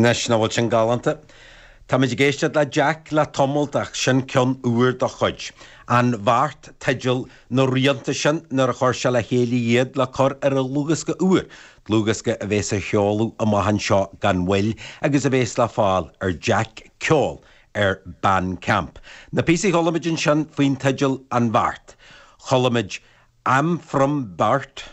Anois, nach bhfuil sin galánta? Táimid ag éisteacht le Jack le tamalt ach sin ceann úr dá chuid. An Bheart, teideal na rianta sin nuair a chuir sé le chéile iad le cur ar a dhlúthdhiosca úr, dlúthdhiosca a bhéas á sheoladh amach anseo gan mhoill agus a bhéas le fáil ar Jack Ceol ar Bandcamp. Na píosaí a chuala muid ansin faoin teideal An Bheart, chuala muid I'm from Burt,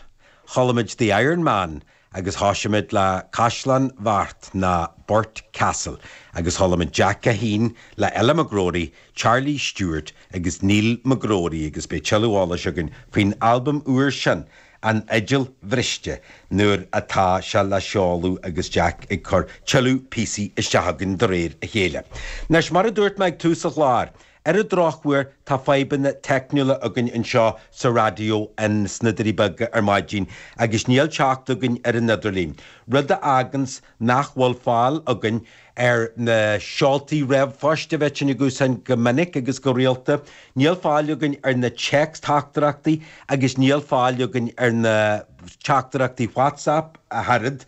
chuala muid The Iron Man agus thosaigh muid le Caisleán Bheart nó Burt Castle agus chuala muid Jack é fhéin le Ella McGrory, Charlie Stewart agus Neil McGrory agus beidh tuilleadh eolais againn faoin albam úr sin, An Fhidil Bhriste nuair atá sé le seoladh agus Jack ag cur tuilleadh píosaí isteach againn de réir a chéile. Anois, mar a dúirt mé ag tús an chláir, Ar an drochuair, tá fadhbanna teicniúla againn anseo sa raidió ins na Doirí Beaga ar maidin agus níl teacht againn ar an idirlíon, rud a fhágans nach bhfuil fáil againn ar na seoltaí ríomhphoist a bheadh sinn ag úsáid go minic agus go rialta, níl fáil againn ar na téacs-theachtaireachtaí agus níl fáil againn ar na teachtaireachtaí WhatsApp ach oiread.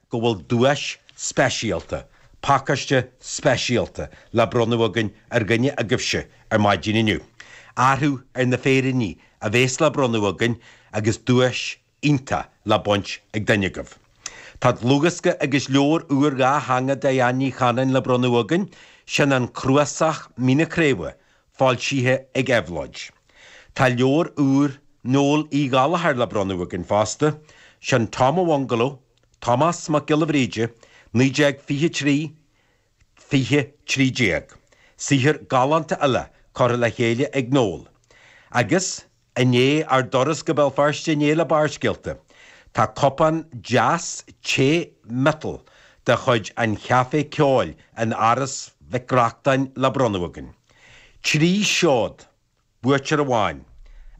go bhfuil duais speisialta, pacáiste speisialta, le bronnadh againn ar dhuine agaibhse ar maidin inniu. Athrú ar na féiríní a bhéas le bronnadh againn agus duais iontach le baint ag duine agaibh. Tá dlúthdhiosca agus leabhar úr dhátheangach Diane Ní Chanainn le bronnadh againn, sin An Cnuasach Mín na Craoibhe, Foilsithe ag Éabhlóid. Tá leabhar úr Noel Uí Ghallchóir le bronnadh againn fosta, sin Tom an Bhungaló, Tomás Mac Giolla Bhríde, 1923, 2013. Saothar galánta eile curtha le chéile ag Noel. Agus I ndiaidh ár dturas go Béal Feirste inné le Barrscéalta, tá cupán deas tae miotail de chuid an Chaifé Ceoil in Áras Mhic Reachtáin le bronnadh againn. Trí sheod, buaiteoir amháin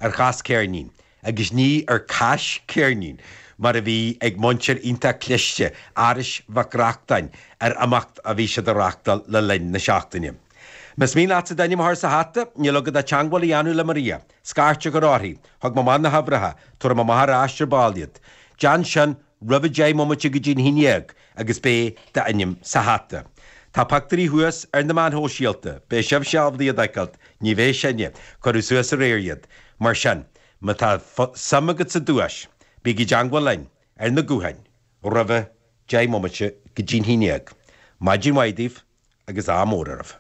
ar Chas Ceirnín agus ní ar Cáis Ceirnín mar a bhí ag muintir iontach cliste Árais Mhic Reachtáin ar imeacht a bhí siad a reachtáil le linn na seachtaine. Más mian leatsa d'ainm a chur sa hata, níl agat ach teagmháil a dhéanamh le Maria. Scairt a chur uirthi. Thug mé amach na huimhreacha. Tabharfaidh mé amach aríst ar ball iad. Déan sin roimh a deich mbomaite go dtí an haon dhéag agus beidh d'ainm sa hata. Tá pictiúirí thuas ar na meáin shóisialta. Beidh sibhse ábalta iad a fheiceáilt. Ní bheidh sinne. Cuireadh suas aréir iad. Mar sin, má tá suim agat sa duais, bígí i dteagmháil linn. Ar na gutháin. roimh a 10 mbomaite go dtí'n haon dhéag, maidin mhaith daoibh agus ádh mór oraibh!